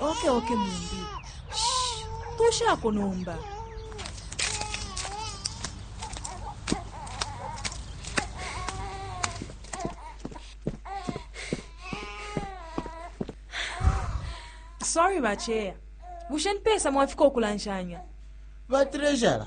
oke oke mumbi tushako nomba sorry bacheya bushe nipesa mwafika ukulanshanya batrejara